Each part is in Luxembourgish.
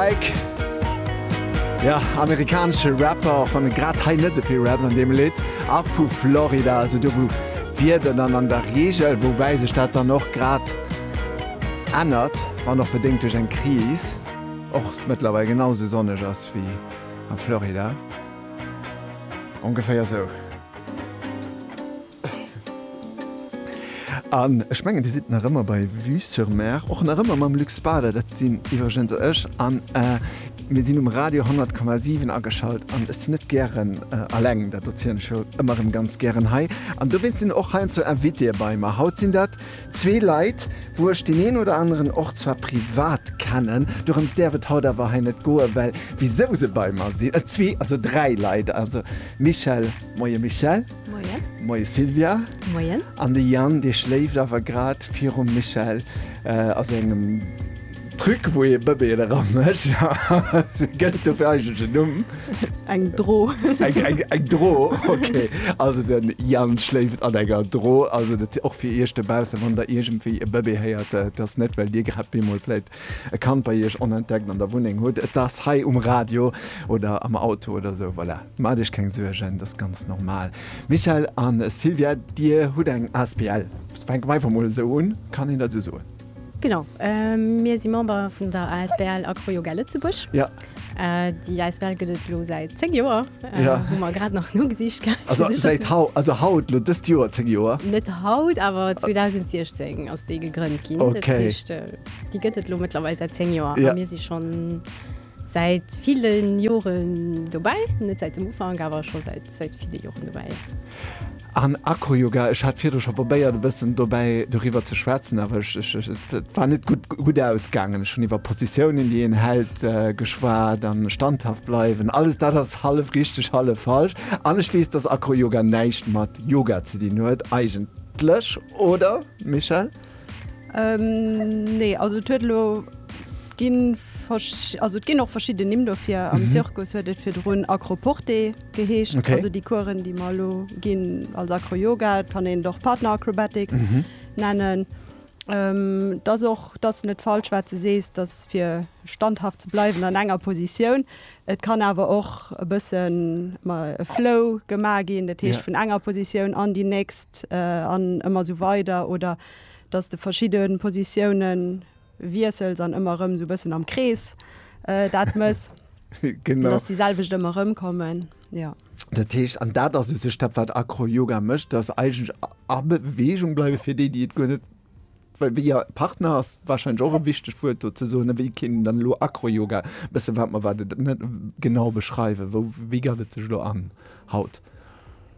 Drake, jo, amerikanesche Rapper, och wann e grad hei net souvill rappt an deem Lidd, a vu Florida, also do wou d'Wieder dann an der Reegel, woubäi sech dat dann och grad ännert, wann och bedéngt duerch eng Kris, och mëttlerweil genau sou sonneg ass wéi a Florida, ongeféier sou. An ech mengen, Dir sidd nach ëmmer bei Vue-sur-Mer, och nach ëmmer mam Luc Spader. Dat sinn iwwregens ech. An mir sinn um Radio 100,7 ageschalt. An ech sinn net gären eleng, dat erzielen ech jo ëmmer erëm ganz gären hei. An dowéinst sinn och heiansdo Invitéeë bei mer. Haut sinn dat zwee Leit, wou ech deen een oder aneren och zwar privat kennen. Dorëms däerf et haut awer hei net goen, well wisou se bei mer sinn, et zwee, also dräi Leit, also Michèle, Moie Michèle. Moien. Moie Sylvia. Moien. An de Yann, dee schléift awer grad virum Michel a sengem Truc, wou ee Bëbeeën eramécht. Gëtt et dofir eigentlech en Numm? Eng Dro. Eng Dro, ok. Also de Yann schléift an enger Dro. Also dat och fir Iech dobaussen, wann Der iergendwéi e Bëbee héiert, et ass net, well Dir grad bemol vläit e Kand bei Iech onentdeckt an der Wunneng hutt. Et ass hei um Radio oder am Auto oder esou, voilà. Maacht iech keng Suergen, dat ass ganz normal. Michèle a Sylvia, dir hutt eng asbl, fänke mer einfach mol esou un, kann een dat esou soen? Genau, mir si Member vun der asbl Acroyoga Lëtzebuerg. Déi asbl gëtt et elo säit 10 Joer, hu mer grad nach nogesicht gehat. Also haut, elo dëst Joer 10 Joer? Net haut, awer 2016 ass déi gegrënnt ginn. Dat heescht, déi gëtt et elo mëttlerweil säit 10 Joer a mir si schonn. Säit villen Joren dobäi, net säit dem Ufank, awer scho säit säit ville Joren dobäi. An Acroyoga, ech hat virdru scho probéiert e bëssen dobäi doriwwer ze schwätzen, awer ech ech ech et war net gutt gutt ausgaangen. Ech hunn iwwer Positiounen déi een hält geschwat a standhaft bleiwen. Alles dat ass hallef richteg, hallef falsch. An ech weess, dass Acroyoga näischt mat Yoga ze dinn huet eigentlech, oder Michèle? Ähm, nee, also et huet elo ginn versch- also et ginn och verschidden Nimm dofir. Am Zirkus huet et virdrun Acroporté geheescht. Okay. Also déi Coursen, déi mer elo ginn als Acro-Yoga, et kann een et och Partner Acrobatics nennen. Ähm, et ass och, et ass net falsch wat s de sees, dass fir standhaft ze bleiwen an enger Positioun, Et kann awer och e bëssen e Flow gemaach ginn, dat heescht vun enger Positioun an déi nächst an ëmmer esou weider oder datt s de verschidde Positioune wiessels an ëmmer erëm esou e bëssen am Krees dat mëss, datt déi selwecht ëmmer erëmkommen. Dat heescht, an dat ass u sech dat, wat Acroyoga mécht, datt eigentlech a Beweegung bleiwe fir déi, déi et guer net Partner ass warscheinlech och e wichtegt Wuert do ze soen. Wéi kéint een dann elo Acroyoga, e bësse wat mer wat et net genau beschreiwen, wou wéi gëtt et sech elo an haut?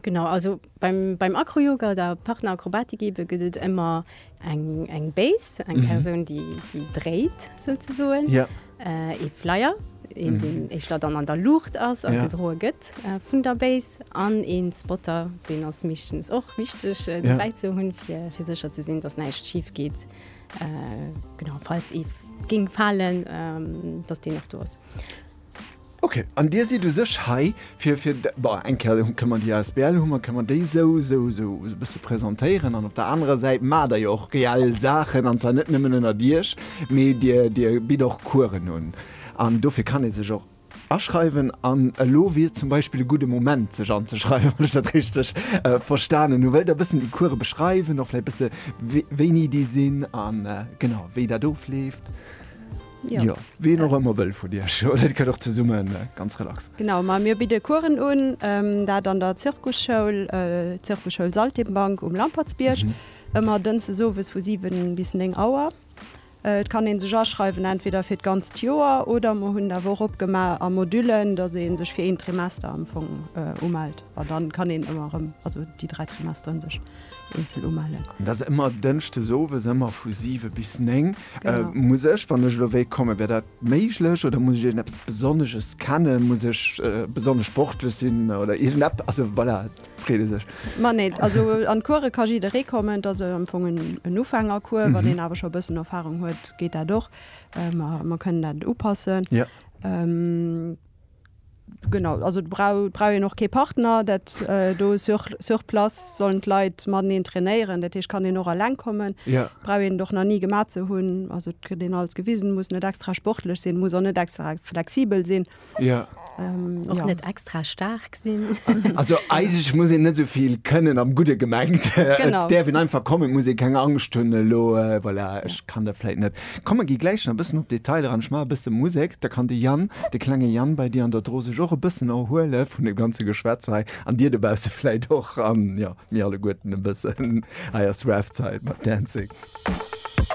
Genau, also beim beim Acroyoga oder Partner Acrobatik ebe gëtt et ëmmer eng eng Base, eng Persoun déi déi dréit souzesoen. Ee Flyer, een deen éischter dann an der Luucht ass a gedroe gëtt vun der Base an ee Spotter, deen ass meeschtens och wichteg dobäi ze hunn, fir sécher ze sinn, datt näischt schif geet. Genau, falls ee géing falen, datt deen nach do ass. Ok, an dir sidd u sech hei fir, fir, bon, eng Kéier kënne mer déi asbl hu mer, kënne mer déi esou, esou, esou e bësse presentéieren an op der anerer Säit maacht der jo och reell Saachen, an zwar net nëmmen ënnert Iech, mee dir, dir bitt och Coursen un an dofir kann ee sech och aschreiwen an elo wier zum Beispill e gudde Moment, sech anzeschreiwen, wann ech dat richteg verstanen hu. Wëllt Der e bëssen déi Course beschreiwen, och vläicht e bësse wéini déi sinn a genau wéi dat ofleeft? Jo. Jo, wien och ëmmer wëll vun Iech, oder Dir kënnt och zesumme ganz relax. Genau, ma mir bidde Coursen un, dat an der Zirkusschoul, Zirkusschoul Saltimbanque um Lampertsbierg, ëmmer dënses owes vu 7 bis 9 Auer. Et kann ee sech aschreiwen, entweder fir d'ganzt Joer oder mer hunn et awer och opgemaach a Modullen, dass ee sech fir een Trimester am Fong umellt. An da kann een ëmmer erëm, also déi dräi Trimesteren, sech eenzel umellen. An dat ass ëmmer dënschdes owes, ëmmer vu 7 bis 9. Muss ech, wann ech elo wéilt kommen, wär dat méiglech oder muss ech iergendeppes Besonnesches kennen? Muss ech besonnesch sportlech sinn oder iergendeppes? Also voilà, freet ee sech. Ma nee, also an d'Course ka jidderee kommen. Et ass am Fong en Ufängercours. Wann een awer scho e bëssen Erfarung huet, geet dat och. Mer kënnen dat upassen. Genau, also brauch brauch een och kee Partner dat do sur sur place sollen d'Leit mateneen trainéieren, dat heescht kann een och alleng kommen. Ja. Brauch een et och nach ni gemat ze hunn, also et kritt een alles gewisen, muss net extra sportlech sinn, muss och net extra flexibel sinn. Ja. Och ja. net extra staark sinn. Also eigentlech muss een net esou vill kënnen, am Gudde gemengt. Genau. Et däerf een einfach kommen, muss ee keng Angscht hunn elo, voilà, ech kann dat vläit net. Komm mer gi gläich nach e bëssen op d'Detailer an, ech maache e bësse Musek, da kann de Yann, de klenge Yann bei dir an der Dro sech och e bëssen erhuele vun deem ganze Geschwätz hei an dir dobausse vläicht och an, jo, mir alleguerten e bëssen. Hei ass Raf Zeit mat Dancing.